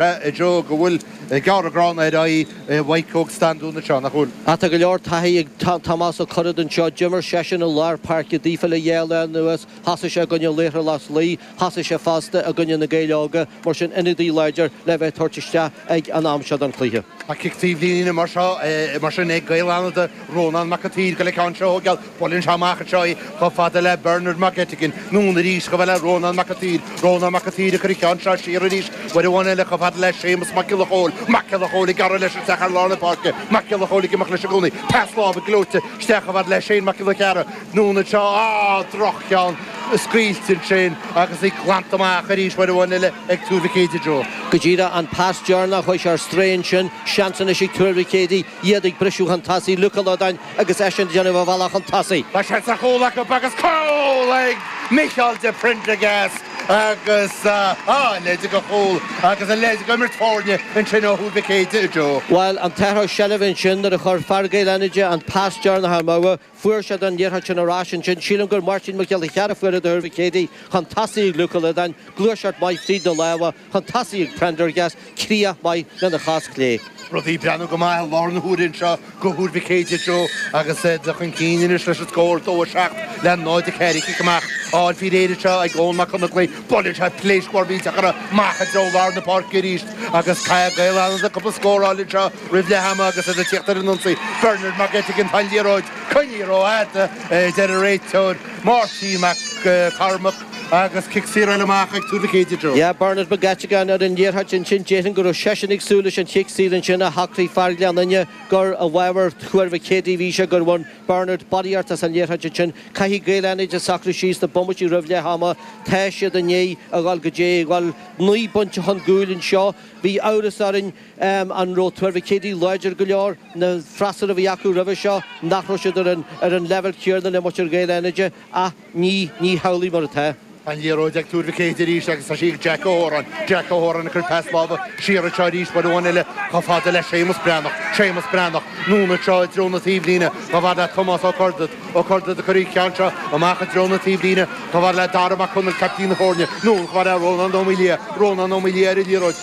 Joe go bhfuil gearradh gránna ar aghaidh Mhaidhc Óg Standún anseo, nach bhfuil? Ach tá go leor taithí ag Tomás Ó Curraoin anseo. D'imir seisean i lár páirce daofa le dhá lá anuas, thosaigh sé i gcoinne Laochra Loch Lao, thosaigh sé fosta i gcoinne Na Gaeil Óga, mar sin ionadaí láidir le bheith ag tabhairt isteach ag an am seo den chluiche. Tá cic taobhlíne mar sin ag Gaeil Fhánada, Rónán Mac an tSaoir, go le ceann Sheoigheach. Buaileann sé amach anseo í, chomh fada le Bernard Mac Eiteagain, anonn arís, chomh fada le Rónán Mac a tSaoir, Rónán Mac a tSaoir ag cur an cheann seo siar arís, uair amháin eile, chomh fada le Séamus Mac Giolla Chomhaill, Mac Giolla Chomhaill ag gearradh leis isteach thar lár na páirce, Mac Giolla Chomhaill ag imeacht leis i gcónaí, pas láimhe gleoite isteach chomh fada le Seán Mac Giolla Chearra, anonn anseo, á! droch-cheann, scaoilte ansin agus í glanta amach arís uair amháin eile ag Tuar Mhic Éadaigh, Joe. Go díreach an pas deireanach, chuaigh sé ar strae ansin, seans anois ag Tuar Mhic Éadaigh, iad ag briseadh chun tosaigh, Luke Ó Loideáin agus eisean ag déanamh a bhealach chun tosaigh. Tá sé sa chúl acu agus cúl ag Micheál de Prendergast agus a leithéid de chúl agus a leithéid de imirt foirne ansin ó Thuar Mhic Éadaigh, Joe. Bhuel an t-athrú seilbhe ansin nuair a chuir fear Gaeil Fhánada an pas deireanach amú. Fuair siad an liathróid sin ar ais ansin. Sílim gur Máirtín Mac Giolla Chearra fuair é do Thuar Mhic Éadaigh chun tosaigh ag Luke Ó Loideáin. Gluaiseacht mhaith fríd na lámha. chun tosaigh ag Prendergast críoch maith lena chos chlé. Rudaí ag breathnú go maith i láthair na huaire anseo do Thuar Mhic Éadaigh Joe agus iad ag dul chun cinn anois leis an scór 2 7 le 0 4 cic amach ard fríd an aer anseo ag Eoghan Mac Conaglaigh. Buaileann sé pléasc mhór mhillteach uirthi amach i dtreo lár na páirce arís agus caithfidh Gaeil Fhánada cúpla scór a fháil anseo roimh leath ama agus iad ag tíocht ar an ionsaí. Bernard Mag Eiteagain Tá an liathróid coinnithe rófhada a deir an réiteoir Máirtín Mac Cormaic. agus cic saor eile amach ag Tuar Mhic Éadaigh anseo. Dhear Bernard McGettigan ar an liathróid ansin, déarfainn go raibh seisean ag súil leis an chic saor ansin ach shocraigh fear Ghleann Fhinne gur i bhfabhar Thuar Mhic Éadaigh a bhí sé, gur bhain Bernard barraíocht as an liathróid ansin. Caithfidh Gaeil Fhánada socrú síos na bomaití roimh leath ama, tá siad i ndiaidh a dhul go dtí a dhul naoi bpointe chun cúil anseo. Bhí amhras orainn an raibh Tuar Mhic Éadaigh láidir go leor, na freasúra a bhí acu roimhe seo, nach raibh siad ar an leibhéal céarna le muintir Ghaeil Fhánada. Ach ní ní hamhlaidh mar atá. An liathróid ag Tuar Mhic Éadaigh arís agus tá sí ag Jack Ó hÓráin. Jack Ó hÓráin ag cur pas láimhe siar anseo arís uair amháin eile chomh fada le Séamus Breathnach. Séamus Breathnach, anonn anseo i dtreo na taobhlíne. Chomh fada le Tomás Ó Curdaid. Ó Curdaid ag cur an cheann seo amach i dtreo na taobhlíne. Chomh fada le Dara Mac Conaill, caiptín na foirne. Anonn chomh fada le Rónán Ó Maolaodha. Rónán Ó Maolaodha ar an liathróid.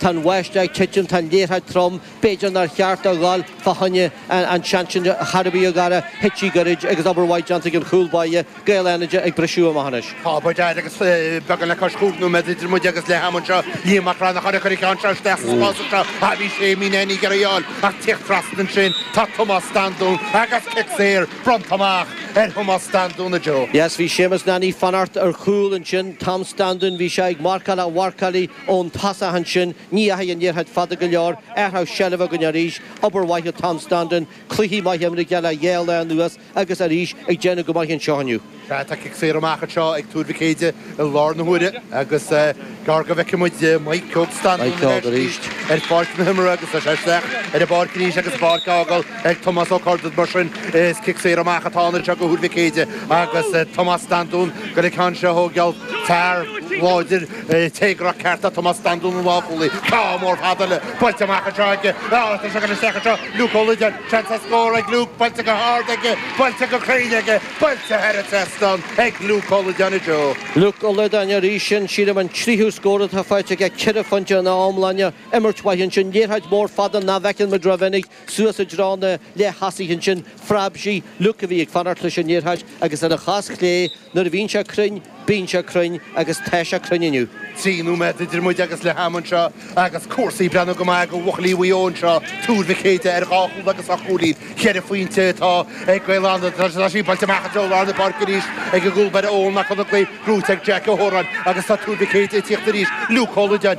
Tá an bháisteach ag titim, tá an liathróid trom, b'fhéidir nár cheart dó ghoil fá choinne an tseans sin a charbadh gur thit sí gairid agus obair mhaith déanta ag an chúl báire, Gaeil Fhánada ag briseadh amach anois. Tá obair ghéar agus beagán le cois cúig nóiméad idir muid agus leath am anseo. Liam Mac Reannacháin ag cur an ceann seo isteach sa spás anseo ach bhí Séimí Nanny ag iarraidh í a fháil ach ag tíocht trasna ansin tá Tomás Standún agus cic saor bronnta amach ar Thomás Standún Joe. Yes, bhí Séamus Nanny ag fanacht ar chúl ansin, Tom Standún, bhí sé ag marcáil an-mharcáil Ón tosach ansin, ní dheachaigh an liathróid fada go leor athrú seilbhe againn arís, obair mhaith le Tom Standún, cluichí maithe imrithe aige le dhá lá anuas agus arís ag déanamh go maith anseo inniu. Tá cic saor amach anseo ag Tuar Mhic Éide i lár na huaire agus gearr go bhfeicfidh muid Mike Ceoc Standún in airde ar pháirc na himeartha agus tá sé isteach ar an bpáirc arís agus an pháirc á fhágáil ag Tomás Ó Curdaid. Mar sin, is cic saor amach atá ann anseo do Thuar Mhic Éide agus Tomás Standún ag goil an ceann seo a thógáil, fear láidir téagartha ceart é Tomás Standún an lánchúlaí, ceann mór fada buailte amach anseo aige, áit a dtagann isteach anseo Luke Ó Loideáin, seans ar scór ag Luke, buailte go hard aige, buailte go cruinn aige, buailte thar an trasnán ag Luke Ó Loideáin i dtreo. Luke Ó Loideáin arís, sin, sílim, an tríú scór atá faighte aige, ceithre phointe ina iomláine, imirt mhaith ansin, liathróid mhór fada nach bhfeiceann muid rómhinic, Suas i dtreo na leath-thosaithe ansin phreab sí Liúc a bhí ag fanacht leis an liathróid agus ar a chos chlé Nuair a bhíonn sé cruinn, bíonn sé cruinn agus tá sé cruinn inniu. Trí nóiméad idir muid agus leath ama anseo agus cúrsaí ag breathnú go maith ag bhuachaillí Mhaigh Eo anseo. Tuar Mhic Éide ar dhá chúl agus ocht gcúilín, cheithre phointe, atá ag Gaeil Fhánada tá sí buailte amach i dtreo lár na páirce arís ag an gcúlbaire Eoghan Mac Congail, brúite ag Jeaic Ó hÓráin, agus tá Tuar Mhic Éide ag tíocht arís. Liúc Ó Loideáin.